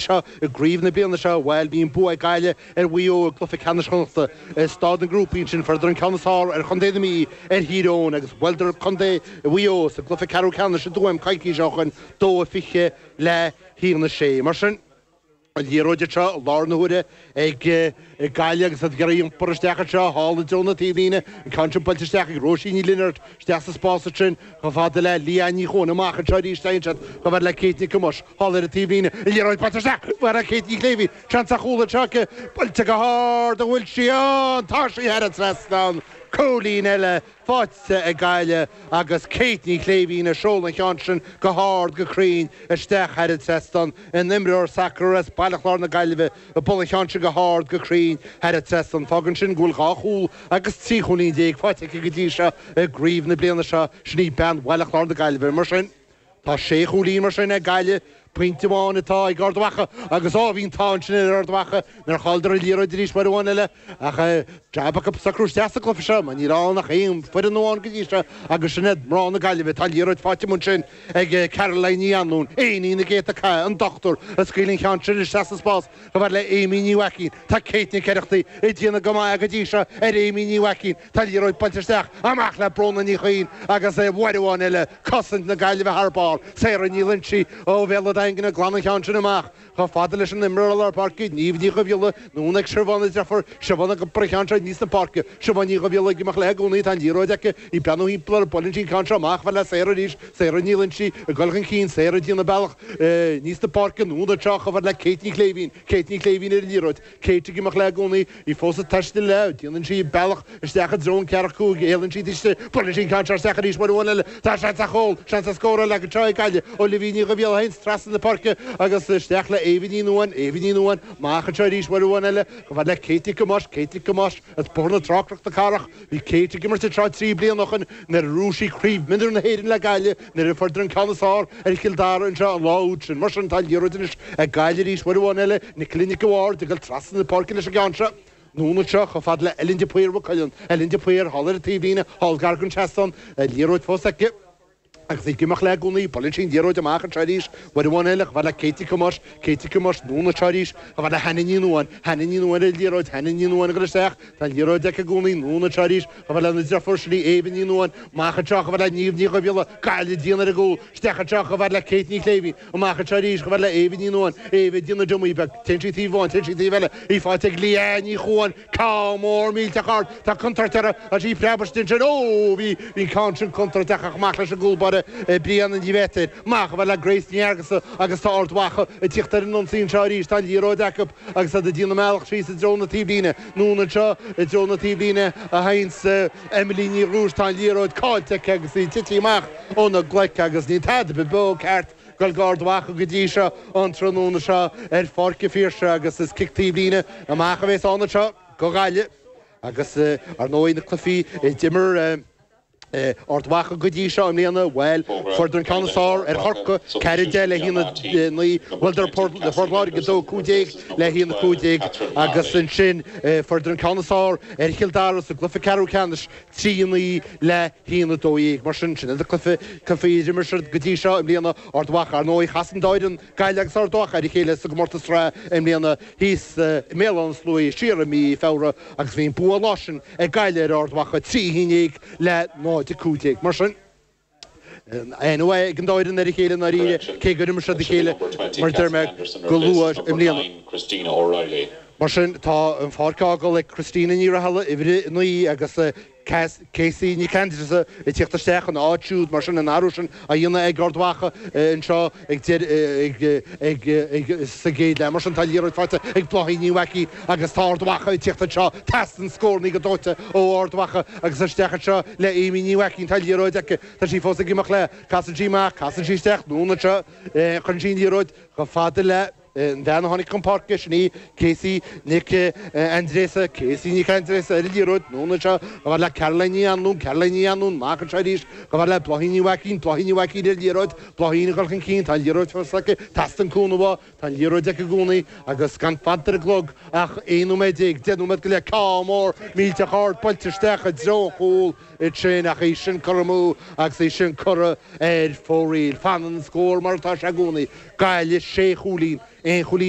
seo i gcraobh na bliana seo, bhuel, bhí an bua ag Gaillimh ar Mhaigh Eo i gcluiche ceannais Chonnachta i staid na ngrúpaí, ansin fuaireadar an ceann is fearr ar Chontae na Mí ar Thír Eoghain agus bhuaileadar Contae Mhaigh Eo sa gcluiche ceathrú ceannais i dTuaim coicís ó shoin, 2-20 le 1-6. Mar sin, an liathróid seo i láthair na huaire ag Gaillimh agus iad ag iarraidh iompar isteach anseo thall i dtreo na taobhlíne, an ceann sin buailte isteach ag Róisín Ní Lionáird, isteach sa spás ansin chomh fada le Leanne Ní Chomhghain, amach anseo arís téann siad chomh fada le Kate Nic Thomáis, thall ar an taobhlíne, an liathróid buailte isteach ag Kate Ní Shléibhín, seans ar chúl anseo aici, buailte go hard, an bhfuil sí ann, tá sí thar an trasnán, cúilín eile, faighte ag Gaillimh agus Kate Ní Shléibhín a sheol an ceann sin go hard go cruinn isteach thar an trasnán an t-imreoir sacair as Baile Chláir na Gaillimhe a bhuail an ceann sin go hard go cruinn thar an trasnán. Fágann sin go bhfuil dhá chúl agus trí chúilín déag faighte aici go dtí seo i gcraobh na bliana seo. Sin í bean Bhaile Chláir na Gaillimhe mar sin. Tá sé chúilín mar sin ag Gaillimh, pointe amháin atá ag Ard Mhacha agus ó, bhí an t-ádh ansin ar Ard Mhacha nár chailleadar an liathróid arís uair amháin eile ach jab acu socrú isteach sa gcluiche seo mar níl ann ach aon foireann amháin go dtí seo agus sin iad mná na Gaillimhe. Tá liathróid faighte amuigh ansin ag Caroline Ní Anluain, iníon na gcéadta cath an dochtúir a scaoil an ceann sin isteach sa spás chomh fada le Amy Ní Mhaicín. Tá Kate Nic Oireachtaigh ag déanamh go maith go dtí seo ar Amy Ní Mhaicín. Tá liathróid buailte isteach amach le Bróna Ní Chuinn agus aon uair amháin eile, cosaint na Gaillimhe thar barr. Sarah Ní Loingsigh ó Bhéal an Daingin a ghlan an ceann sin amach. Chomh fada leis an imreoir i lár páirce, Niamh Ní Dhubhghiolla, anonn ag Siobhán a deirfiúr Siobhán ag iompar an ceann seo aníos na páirce. Siobhán Ní Dhubhghiolla ag imeacht léi i gcónaí, tá an liathróid aici, í ag breathnú timpeall uirthi buaileann sí an ceann seo amach, chomh fada le Sarah arís. Sarah Ní Loingsigh ag dul chun cinn, Sarah ag déanamh a bealach aníos na páirce, anonn anseo chomh fada le Kate Ní Shléibhín. Kate Ní Shléibhín ar an liathróid. Kate ag imeacht léi i gcónaí. Í fós ag taisteal léi. Déanann sí a bealach isteach i dtreo an ceathracha cúig. Éalaíonn sí thairsti. Buaileann sí an ceann seo isteach arís uair amháin eile. Tá seans ar chúl. Seans scórála anseo ag Gaillimh Olivia Ní Dhubhghiolla ansin trasna na páirce agus isteach le Eva Ní Nuáin. Eva Ní Nuáin amach anseo arís uair amháin eile. Chomh fada le Kate Nic Thomáis. Kate Nic Thomáis as Bóthar na Trá Cnoc na Cathrach. Bhí Kate ag imirt anseo trí bliana ó shin nuair a bhuaigh sí Craobh Mionúir na hÉireann le Gaillimh. Nuair a fuaireadar an ceann is fearr ar Chill Dara anseo an lá úd sin, mar sin, tá liathróid anois ag Gaillimh arís uair amháin eile, Nicola Nic an Bhaird, ag dul trasna na páirce leis an gceann seo. Anonn anseo, chomh fada le Ellen de Paor Mhaigh Cuilinn. Ellen de Paor thall ar an taobhlíne, thall gar don seastán, an liathróid fós aici, agus í ag imeacht léi i gcónaí. Buaileann sí an liathróid amach anseo arís uair amháin eile, chomh fada le Kate Nic Thomáis, Kate Nic Thomáis anonn anseo arís, chomh fada le Hannah Ní Nuáin, Hannah Ní Nuáin ar an liathróid, Hannah Ní Nuáin ag dul isteach, tá an liathróid aici i gcónaí, anonn anseo arís, Chomh fada lena deirfiúr, sin í Éabha Ní Nuáin, amach anseo, chomh fada le Niamh Ní Dhubhghiolla, Gaillimh ag déanamh ar an gcúl, isteach anseo, chomh fada le Kate Ní Shléibhín, amach anseo arís, chomh fada le Éabha Ní Nuáin, Éabha ag déanamh dummy beag, téann sí taobh amháin, téann sí taobh eile, í faighte ag Leanne Ní Chuain, ceann mór millteach ard, tá contúirt orthu agus í ag preabadh istigh ansin, ó bhí, bhí an ceann sin contúirteach ach amach leis an gcúl báire Brianna Ní Bheirtéil, amach, chomh fada le Grace Ní Fheargusa agus tá Ard Mhacha ag tíocht ar an ionsaí anseo arís, tá an liathróid acu, Agus iad ag déanamh a mbealach síos i dtreo na taobhlíne, anonn anseo i dtreo na taobhlíne a théanns Emily Ní Dhrúis, tá an liathróid caillte aici agus í ag tití amach óna glaic agus níl tada be beo ceart ag goil do Ard Mhacha go dtí seo an tráthnóna seo ar Pháirc an Phiarsaigh agus is cic taobhlíne amach a bhéas ann anseo do Ghaillimh agus ar ndóigh na cluifí a d'imir Ard Mhacha go dtí seo i mbliana, bhuel, fuaireadar an ceann is fearr ar Chorcaigh, 4, 10 le haon, 9, bhuaileadar Port Láirge 2, 15 le haon, 15 agus ansin fuaireadar an ceann is fearr ar Chill Dara sa gcluiche ceathrú ceannais, 3, 9 le haon, 12. Mar sin, sin iad na cluichí a d'imir siad go dtí seo i mbliana, Ard Mhacha. Ar ndóigh chas an dá fhoireann. Gaillimh agus Ard Mhacha ar a chéile sa gcomórtas sraithe i mbliana. Thíos i mBéal Átha na Sluaighe siar i mí Feabhra agus bhí an bua an lá sin ag Gaillimh ar Ard Mhacha, 3 1 dhéag le 0 15. Mar sin, an-aithne ag an dá fhoireann ar a chéile i ndáiríre, cé gur imir siad a chéile, mar a deir mé, go luath i mbliana. Mar sin, tá an pháirc á fhágáil ag Christina Ní Rathaille, uimhir 9, agus Casey Nic Aindreasa ag tíocht isteach ina áit siúd mar sin an athrú sin á dhéanamh ag Ard Mhacha anseo ag deireadh sa gcéad leath mar sin tá an liathróid faighte ag Bláithín Ní Mhaicín agus tá Ard Mhacha ag tíocht anseo teastaíonn scórannaí go dóite ó Ard Mhacha agus isteach anseo le Aimee Ní Mhaicín tá an liathróid aici tá sí fós ag imeacht léi casann sí amach casann sí isteach anonn anseo chuireann sí an liathróid chomh fada le An bhean a tháinig chun páirce, sin í Casey Nic Aindreasa, Casey Nic Aindreasa, ar an liathróid, anonn anseo chomh fada le Caroline Ní Anluain, Caroline Ní Anluain, amach anseo arís, chomh fada le Bláithín Ní Mhaicín, Bláithín Ní Mhaicín, ar an liathróid, Bláithín ag dul chun cinn, tá an liathróid fós aici, teastaíonn cúnamh uaithi, tá an liathróid aici i gcónaí agus gan fanta ar an gclog ach 11 nóiméad, 10 nóiméad go leith, ceann mór millteach ard buailte isteach i dtreo an chúil, Í sin, ach í sin curtha amú agus í sin curtha ar fóraoil. Fanann an scór mar atá sé i gcónaí. Gaillimh, sé chúilín, aon chúilín